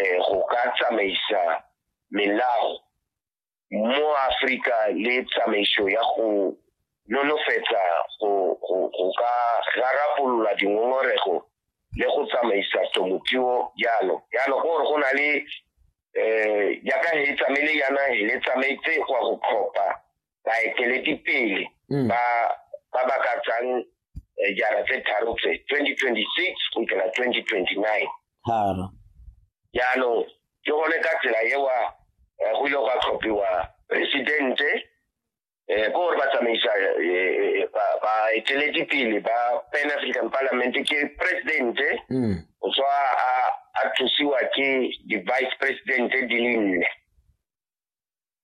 eh, go ka tsamaisa melao mo Afrika le tsamaiso ya go nonofetsa go ka rarabolola dingongorego le go tsamaisa temothuo jalo jalo ke gore go na le um eh, jaaka he tsamaile yana he le tsamaetse go ya go tlhopha baeteledipele mm. ba ba ba ka tsang eh, jara tse tharo tse 2026 go fitlhela 2029 tharo jaanong ke gone ka tsela ewa eh, go ile gwa tlhophiwa presidente um eh, ko gore ba tsamaisa baeteledipele ba pan african parliament ke presidente mm. o tswa a thusiwa ke di-vice presidente di le nne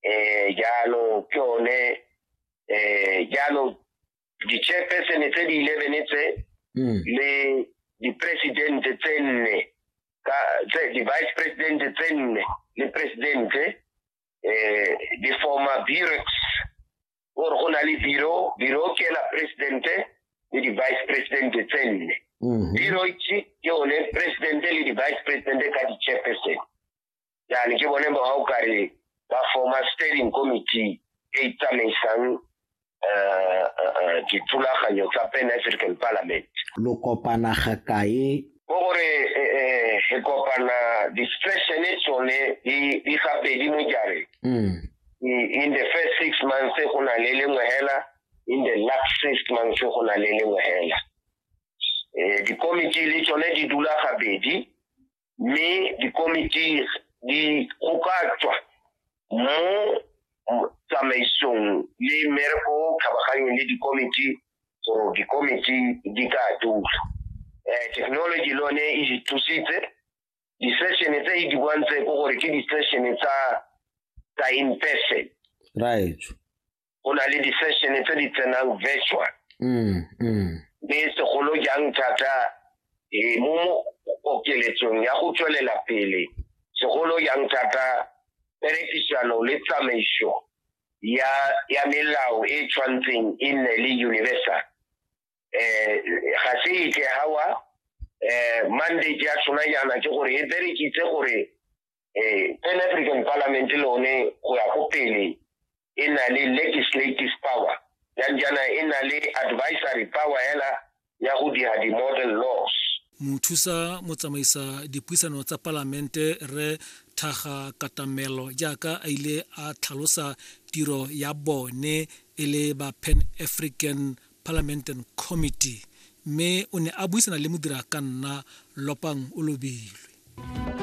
eh, jalo ke one eh, jalo di-chairpersone tse di eleven tse hmm. le di-presidente tse nne di-vice presidente tse nne le presidente eh, di forma burex gore go na le biro biro ke la presidente le di-vice presidente tse nne hmm. biro ke one presidente le di-vice presidente ka di-chairpersone yani ke bone ba ga o kare ba forma standing committee e tsamaisang eh, eh, eh, dithulaganyo tsa pan african parliament lo kopana ga kae ko gore eh, eh, re kopana distressene tsone di di gabedi mo jare mm. I- in the first six months go na le lengwe hela in the last six months go na le lengwe hela eh dikomiti le tsone di dula gabedi mme dikomiti di gokatswa mo tsamaisong le mmereko tlhabaganyeng le dikomiti gore dikomiti di ka dula um technology le one e thusitse di-session tse e di bontse ko gore ke di-session tsa tsa in person right go na le di-session tse di tsenang virtual mm, mm. mme segolo jang thata e, mo okeletsong ya go tswelela pele segolo jang thata perekisano le tsamaiso ya ya melao e tshwantseng e nne le universal eh ga se ike hawa eh mandate ya tsona yana ke gore e berekitse gore eh Pan African Parliament le one go ya go pele e na le legislative power ya njana e na le advisory power hela ya go dira di-model laws mothusa motsamaisa dipuisano tsa palamente re thaga katamelo jaaka a ile a tlhalosa tiro ya bone e le ba pan african parliamentary committee mme o ne a buisana le modira ka nna lopang o lobilwe